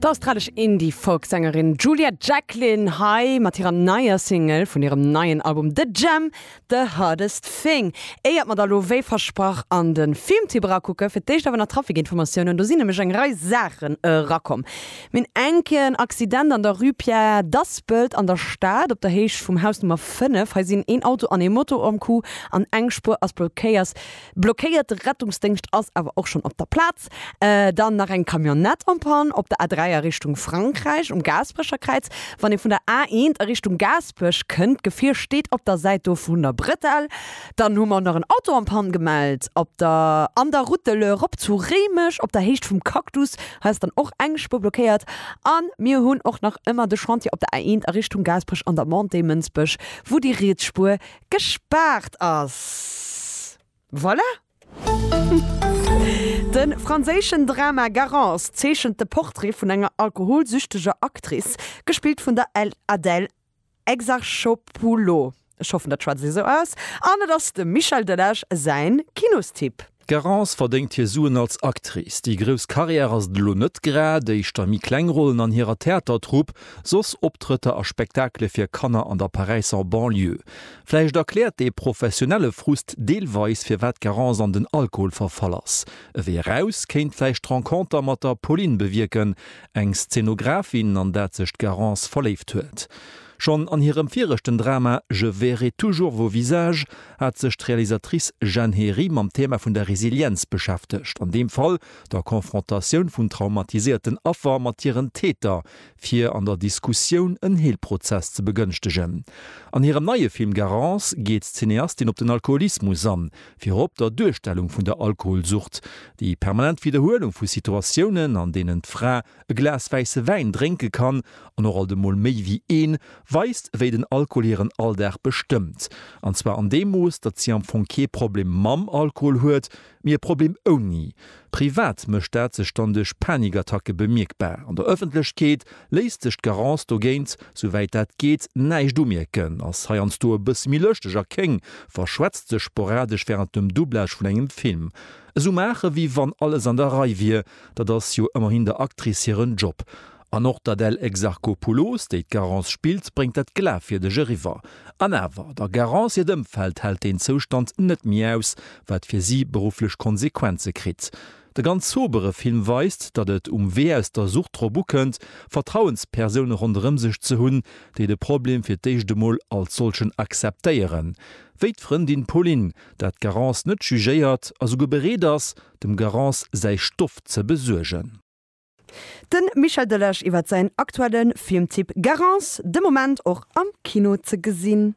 D'australesch Indie-Folk-Sängerin Juliet Jacklin hei mat hirer neier Single vun hirem neien Album The Jam, The Hardest Thing. Éiert mer da lo wéi versprach an de Filmtipp erakucken, fir d'éischt awer nach d'Trafikinformatiounen. Do sinn nämlech eng Rei Saachen erakomm. Mir hunn enk en Accident an der Rue Pierre d'Aspelt an der Stad, op der Héicht vum Haus Nummer 5. Hei sinn een Auto an ee Moto ëm Coup an eng Spuer ass blockéiert. Blockéiert, de Rettungsdéngscht ass awer och schonn op der Plaz. Dann nach eng Camionnette en panne op der A3 a Richtung Frankräich um Gaasperecherkräiz. Wann ee vun der A1 a Richtung Gaasperech kënnt, d'Gefier steet op der Säit do vun der Bretelle. Dann hu mer och nach en Auto en panne gemellt op der an der Route de l'Eure rop zu Réimech op der Héicht vum Cactus. Hei ass dann och eng Spuer blockéiert. A mir hunn och nach ëmmer de Chantier op der A1 a Richtung Gaasperech an der Montée Mënsbech, wou déi riets Spuer gespaart ass. Voilà! De franséischen Drama Garance zeechent de Portrait vun enger alkoholsüchteger Actrice, gespillt vun der Adèle Exarchopoulou, ech hoffen, dat schwätze ech esou aus, an et ass dem Michel Delage säin Kinostipp. D'Garance verdéngt hir Suen als Actrice. Déi grouss Carrière ass et elo net grad, éischter méi kleng Rollen an hirer Theatertrupp, soss Optrëtter a Spektakele fir Kanner an der Paräisser Banlieue. Vläicht erkläert dee professionelle Frust deelweis, firwat d'Garance an den Alkohol verfall ass. E Wee eraus kéint vläicht d'Renconter mat der Pauline bewierken, eng Szenografin, an dat sech d'Garance verléift huet. Schonn an hirem viregten Drama Je verrai toujours vos visages hat sech d'Realisatrice Jeanne Héry mam Thema vun der Resilienz beschäftegt, an deem Fall der Konfrontatioun vun traumatiséierten Affer mat hiren Täter, fir an der Diskussioun en Heelprozess ze begënschtegen. An hirem neie Film Garance geet d'Cineastin op den Alkoholismus an, virop der Duerstellung vun der Alkoholsucht, déi permanent Widderhuelung vu Situatiounen, an deenen d'Fra e Glas wäisse Wäin drénke kann, an och alt emol méi wéi een, weist, wéi den Alkohol hiren Alldag bestëmmt. An zwar an deem Mooss, datt si am Fong kee Problem mam Alkohol huet, Mee e Problem ouni. Privat mécht dat sech dann duerch Panikattacke bemierkbar. An der Ëffentlechkeet léisst sech d'Garance dogéint, souwäit dat geet, näischt umierken, ass heiansdo e bësse méi lëschteg a kéng, verschwätzt sech sporadesch wärend dem Doublage vun engem Film. Esou maachen, wéi wann alles an der Rei wier, dat ass jo ëmmerhin der Actrice hiren Job. An och d'Adèle Exarchopoulos, déi d'Garance spillt, bréngt dat glafwierdeg eriwwer. An awer, der Garance hiert Ëmfeld hält deen Zoustand net méi aus, wat fir si berufflech Konsequenze kritt. De ganz sobere Film weist, datt et um Wee aus der Sucht drop ukënnt, Vertrauenspersoune ronderëm sech ze hunn, déi de Problem fir d'éischt emol als solchen akzeptéieren, wéi d'Frëndin Pauline, dat d'Garance net jugéiert a souguer bereet ass, dem Garance säi Stoff ze besuergen. De Michel Delage iwwert säin aktuelle Filmtipp Garance, de Moment och am Kino ze gesinn.